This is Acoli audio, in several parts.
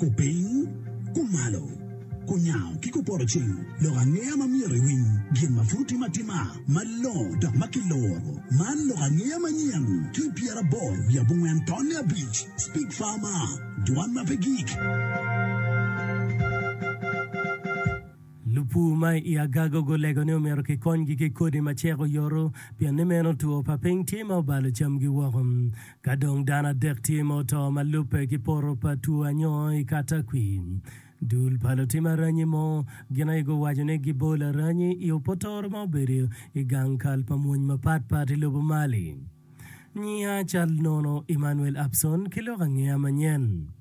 Kupiny, kumalo, kunyango ki kupoto cing lok angeya ma myero iwiny gin ma pud otim atima malongo dok ma kiloro. Man lok angeya manyen ki pyeraboro wiye abongwen tonne abic, Speak Farmer, dwan ma pe gik. Lupur ma i Agago gulego ni omyero kikonygi ki kodi ma cek oyoto pien ni meno two pa piny tye ma obalo camgi woko. Ka dong dano adek tye ma oto ma lubbe ki poto pa two anyoo i Katakwi, dul pa lutim aranyi mo gin aye guwaco ni gibo laranyi i opotoro ma obedo i gang kal pa mwony mapat pat i lobo Mali. Nyiya cal nono Emmanuel Abson ki lok angeya manyen.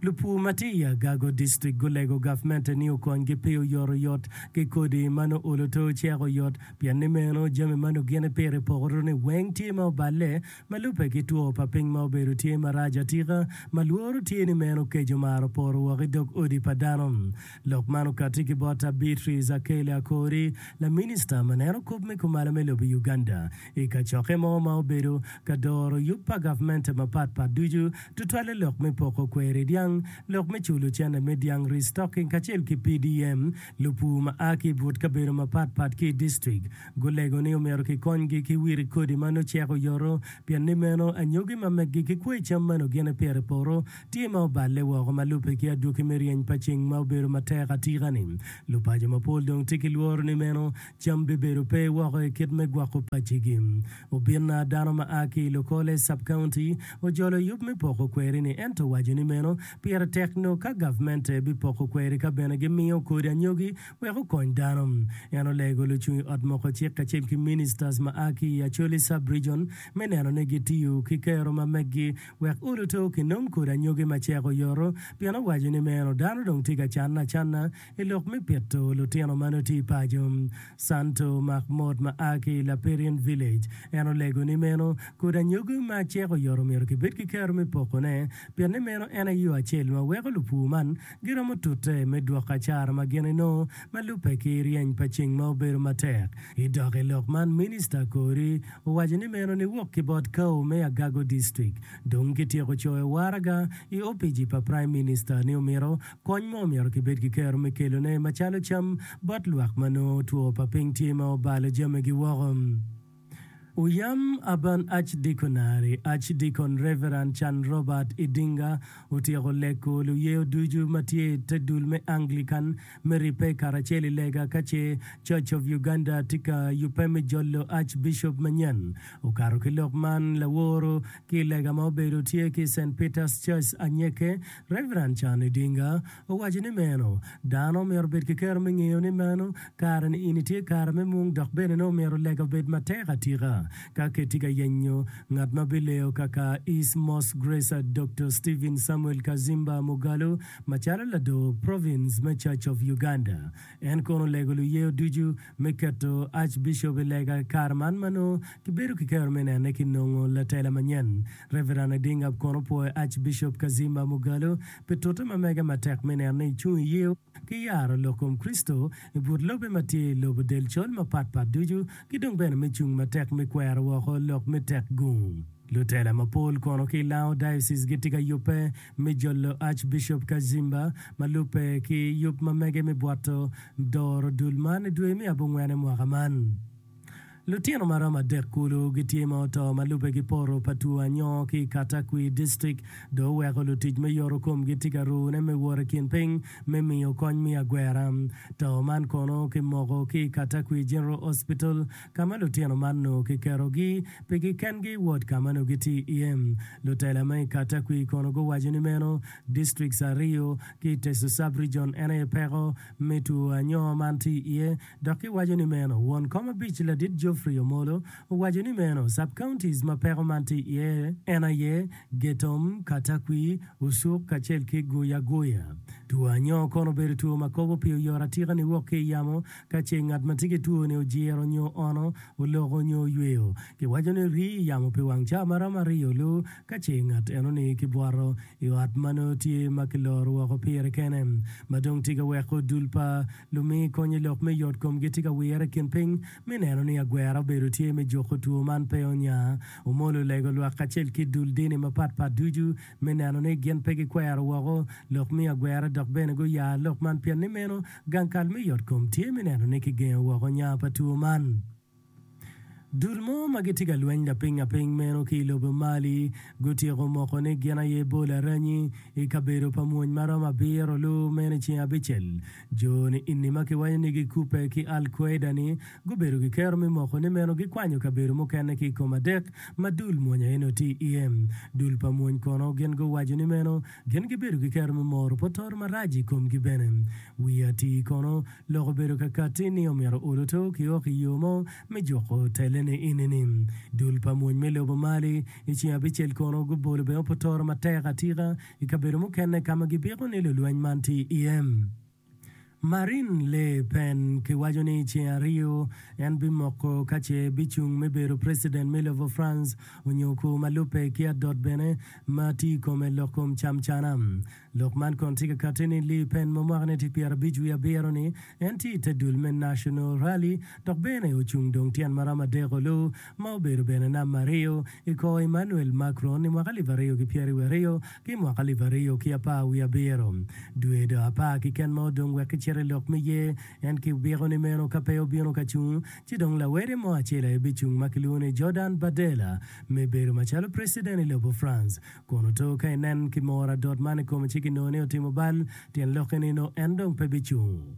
Lupur ma tye i Agago District gulego gavmente ni okonygi pi oyot oyot ki kodi ma nongo olo to ocek oyot pien ni meno jami ma nongo gin ipito i poko-runi weng tye ma oballe ma lubbe ki two pa piny ma obedo tye marac atika ma lworo tye ni meno okeco mar opoto woko i dog odi pa dano. Lok man okati ki bot ta Beatrice Akeli Akori, laminista ma neno kop me kumalo me lobo i Uganda. I kacokke mo ma obedo ka doro yub pa gavmente mapat pat ducu, tutwalle lok me poko kweri dyang, lok me culo cene me dyang, restocking, kacel ki PDM, lupur ma a ki i but kabedo mapat pat ki i distrik gulego ni omyero kikonygi ki wiri kodi ma nongo cek oyoto pien ni meno anyogi ma meggi ki kwei cam ma nongo gin epito i poto tye ma oballe woko ma lubbe ki adwoki me ryeny pa ceng ma obedo matek atika-ni. Lupaco mapol dong tye ki lworo ni meno Cam bibedo pe woko i kit me gwoko paccigi. Obinna, dano ma a ki i Lokole Sub-County, ojolo yub me poko kweri-ni, ento owaco ni meno pire tek nyo ka gavmente bipoko kweri ka bene gimiyo kodi anyogi wek okony dano. En olego lucung i ot moko cik kacel ki ministers ma a ki i Acholi Sub-Region me neno ni gitiyo ki kero ma meggi wek uluto kinong kodi anyogi macek oyoto pien owaco ni meno dano dong tye ka canne acanna I lok me pito lutino ma nongo tye paco, Santo Mahmoud ma a ki Laperian Village, en olego ni meno kodi anyogi ma cik oyoto myero kibed ki kero me pokone pien ni meno en aye yo acel ma weko lupur man giromo tute me dwoko acara ma gin inongo ma lubbe ki ryeny pa ceng ma obedo matek. I dok i lok man Minista kodi owaco ni meno niwok ki bot Kawo me Agago District dong kityeko coyo waraga i opici pa Prime Minister ni omyero Kony ma omyero kibed ki kero me kelone macalo cam bot lwak ma nongo two pa piny tye ma obalo jamigi woko. Oyam Urban Archdeaconry, Archdeacon Reverend Can Robert Idinga otyeko leko luyeyo ducu ma tye i te dul me Anglican me ribbe karacel i lega ka ce Church of Uganda tye ka yubbe me jolo Archbishop manyen. Okato ki lok man laworo ki i lega ma obedo tye ki i Saint Peter's Church Anyeke, Rev. Can Idinga owaco ni meno dano omyero obed ki kero me ngeyo ni meno kare ni in itye kare me mung dok bene ni omyero lega obed matek atika ka ketyi ka yenyo ngat ma bileyo kaka East Most Gracer Doktor Stephen Samuel Kazimba Mugalu macalo lador province me Church of Uganda En kono olego luyeyo ducu me keto Archbishop i lega i kare man ma nongo kibedo ki kero me nene ki nongo latela manyen. Reverend Adinga kono opwoyo Archbishop Kazimba Mugalu pi tute ma mege matek me neno ni ecung i yeyo ki yaro lok kom Kricito i but lobbe ma tye i lobo del col mapat pat ducu ki dong bene me cung matek me kwero woko lok me tek gung lutela mapol kono ki i Lango Diocese gitye ka yubbe me jolo Archbishop Kazimba ma lubbe ki yub ma mege me bwoto doro dul man i dwe me abongwene mwaka man. Lutino ma romo adek kulu gitye ma oto ma lubbe ki poto pa two anyoo ki i Katakwi District dong oweko lutic me yoto komgi tye ka rune me wot i kin piny me miyo kony me agwera. To man kono kimoko ki i Katakwi General Hospital ka ma lutino man nongo kiketogi pigi kengi wot ka ma nongo gitye iye. Lutela ma i Katakwi kono guwaco ni meno, distrikts aryo ki i Teso Sub-Region en aye peko me two anyoo man tye iye dok giwaco ni meno. Won kom abic ladit Geoffrey Omolo owaco ni meno, Sub-counties ma peko man tye iye en aye, Getom, Katakwi, Usuk kacel ki Guya Guya. Two anyoo kono obedo two ma kobo pi oyoro atika niwok ki i yamo Ka ce ngat ma tye ki twoni ojiro nyo ono, oloko nyo oyweyo, kiwaco ni rii i yamo pi wang caa ma romo aryo lu. Ka ce ngat enoni kibwoto i ot ma nongo tye ma kiloro woko pire kene, ma dong tye ka weko dul pa lumi kony i lok me yot komgi tye ka wire i kin piny me neno ni agwera obedo tye me juko two man pe onya, omolo lego lwak kacel ki dul dini mapat pat ducu. me neno ni gin pe gikwero woko lok miyo agwera dok bene guya lok man pien ni meno gang kal me yotkom tye me neno ni kigengo woko nya pa two man. Dul mo ma gitye ka lweny lapingaping meno ki i lobo Mali gutyeko moko ni gin aye bol aranyi i kabedo pa mwony ma romo abiro lu meno i ceng abicel Jo-ni eni ma kiwaco ni gikubbe ki Al Quaeda-ni gubedo ki kero me moko ni meno gikwanyo kabedo mukene ki i kom adek ma dul mwony aye nongo tye iye. Dul pa mwony kono gin guwaco ni meno gin gibedo ki kero me moro potor marac i komgi bene. Wiye atir kono, lok obedo ka katti ni omyero oluto ki ok i yo mo me juko tellene eni-ni. Dul pa mwony me lobo Mali i ceng abicel kono gubolo bene potor matek atika I kabedo mukene ka ma gipiko ni lulweny man tye iye, Marine Le Pen kiwaco ni i ceng aryo en bimoko ka ce bicung me bedo preciden me lobo France onyo kur ma lubbe ki adot bene ma tye i kome lok kom cam cana. Lok man kono tye ka kati ni Le Pen ma mwakane tye pyera abic wiye abiro ni en tye i te dul me National Rally dok bene ocung dong tyen maromo adek olu ma obedo bene nam ma riyo i kor Emmanuel Macron i mwaka alip aryo ki pyeri wiye aryo ki mwaka alip aryo ki apar wiye abiro. Dwe do apar kiken ma odong wek kicit i lok me yer en ki obiko ni meno ka pe obino ka cung ci dong lawede mo acel aye bicung ma kilwongo ni Jordan Bardella me bedo macalo preciden i lobo France. Kun oto ka inen ki mor adot man i kome ci ginongo ni otimo bal, tyen lokke ni nongo en dong pe bicung.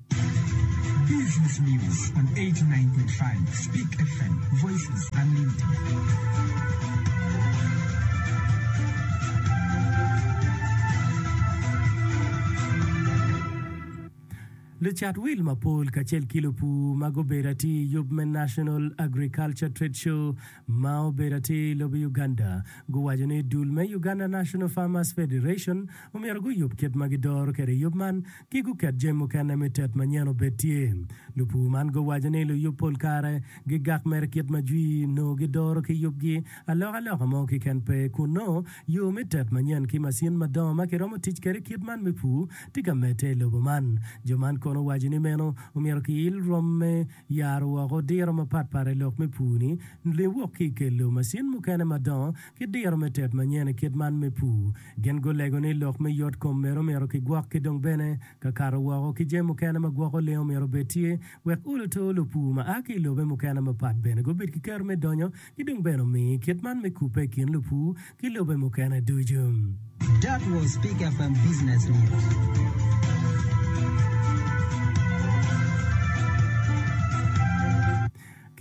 Lucat wil mapol kacel ki lupur ma gubedo atir i yub me National Agriculture Trade Show ma obedo atir i lobo Uganda guwaco ni dul me Uganda National Farmers Federation omyero guyub kit ma gidoro kwede yub man ki guket jami mukene me tet manyen obed tye. Lupur man guwaco ni luyub pol kare gigak mere kit ma jwi nongo gidoro ki yubgi alokaloka mo kiken pe kun nongo yo me tet manyen ki macin madongo ma kiromo tic kwede kit man me pur tye ka medde i lobo man. Jo man kono owaco ni meno omyero kiil rwom me Yaro woko diro mapatpat i lok me pur ni, Lwiny wok ki i kelo macin mukene madongo ki diro me tet manyen i kit man me pur. Gin gulego ni lok me yot kom medo myero kigwok ki dong bene ka kato woko ki jami mukene ma gwoko lengo myero obed tye wek olo to lupur ma a ki i lobe mukene mapat bene gubid ki keto me donyo ki dong bene omi kit man me kubbe i kin lupur ki lobe mukene ducu. That was Pick FM Business News.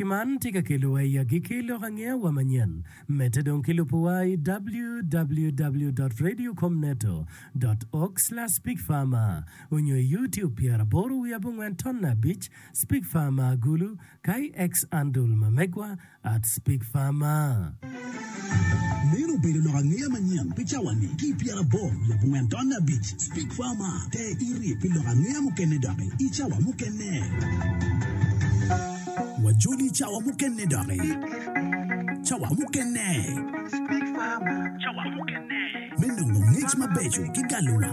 Ki man tye ka kelowa i agikki lok angeya wa manyen. Medde dong ki lubuwa i www.radiocomneto.org/speakfarmer onyo i YouTube pyeraboro wiye abongwen tonna abic, Speak Farmer Agulu, KX Andul ma megwa at speak far ma. Meno obedo lok angeya manyen pi cawani ki i pyera aboro leb ongwen tonne abic. Speak far ma te iri pi lok angeya mukene doki i cawa mukene. Wajoli i cawa mukene doki. Cawa mukene. Speak far ma. Cawa mukene. Me nongo ngec mabeco ki galo wang.